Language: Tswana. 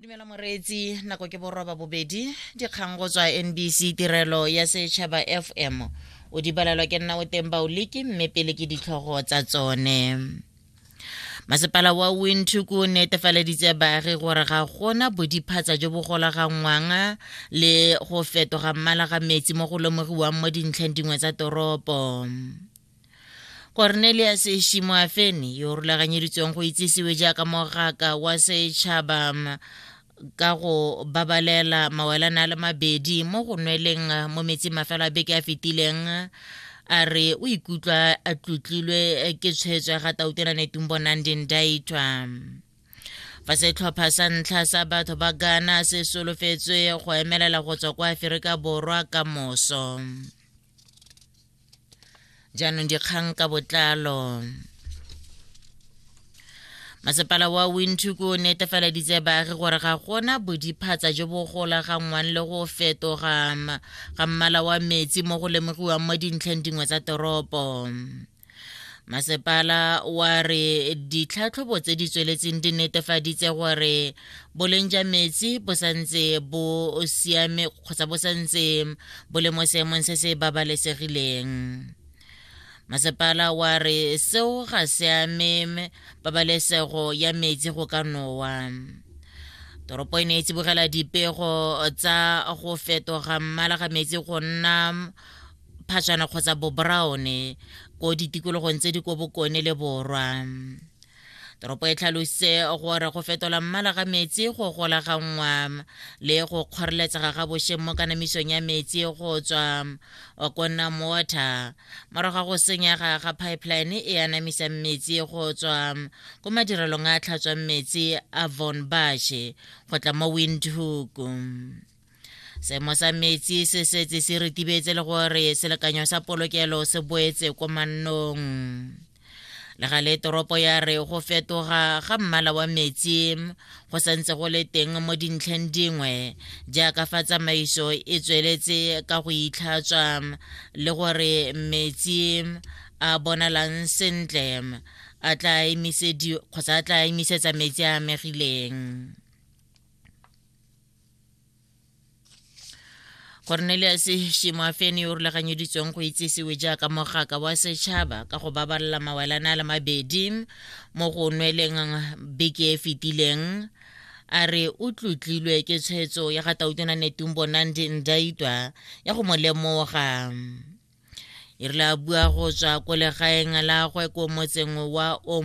dumela moreetsi nako ke boroba bobedi dikgang go tswa nbc tirelo ya setšhaba fm o di balelwa ke nna o teng baoliki mme pele ke ditlhogo tsa tsone masepala wa windhoek o netefaleditse baagi gore ga gona bodiphatsa jo bo golaganngwang le go fetoga mmala ga metsi mo go lomogiwang mo dintlheng dingwe tsa toropo cornelius shimoafeni yo o rulaganyeditsweng go itsisiwe jaaka mogaka wa setšhaba ka go babalela mawelana a le mabedi mo go nweleng mo metsing mafelo a beke a fetileng a re o ikutlwa a tlotlilwe ke tshwetso ya ga tautena netumbo nandi ndaitwa fa setlhopha sa ntlha sa batho ba gana se solofetswe go emelela go tswa kwa aferika borwa ka moso jaanong dikgang ka botlalo masepala wa windhoek o netefaleditse baagi gore ga gona bodiphatsa jo bo golaganngwang le go fetoga ga mmala wa metsi mo go lemogiwang mo dintlheng dingwe tsa toropo masepala wa re ditlhatlhobo tse di tsweletseng di netefaditse gore boleng ja metsi bo santse bo siame kgotsa bo santse bo le mo seemong se se babalesegileng masepala wa re seo ga se ame pabalesego ya metsi go ka nowa toropo e ne e tsibogela dipego tsa go fetoga mmala ga metsi go nna phatšana kgotsa boboraone ko ditikologong tse di ko bokone le borwa toropo e tlhalositse gore go fetola mmala ga metsi go golaganngwa le go kgoreletsega ga bošeng mo kanamisong ya metsi go tswa ko nam water morago ga go senyega ga pipeline e anamisang metsi go tswa ko madirelong a tlhatswang metsi a von bashe go tla mo windhoek seemo sa metsi se setse se retibetse le gore selekanyo sa polokelo se boetse ko mannong le ga le toropo ya re go fetoga ga mmala wa metsi go santse go le teng mo dintlheng dingwe jaaka fa tsamaiso e tsweletse ka go itlhatswa le gore metsi a bonalang sentle a tla emisetsa metsi a amegileng cornelius shimoafene yo o rulaganyeditsweng go itsisiwe jaaka mogaka wa setšhaba ka go babalela mawalana a le mabedi mo go nweleng beke e fetileng a re o tlotlilwe ke tshwetso ya ga tautona netumbo nandi ndaitwa ya go mo lemoga e rile a bua go tswa ko legaeng la gwe ko motseng wa o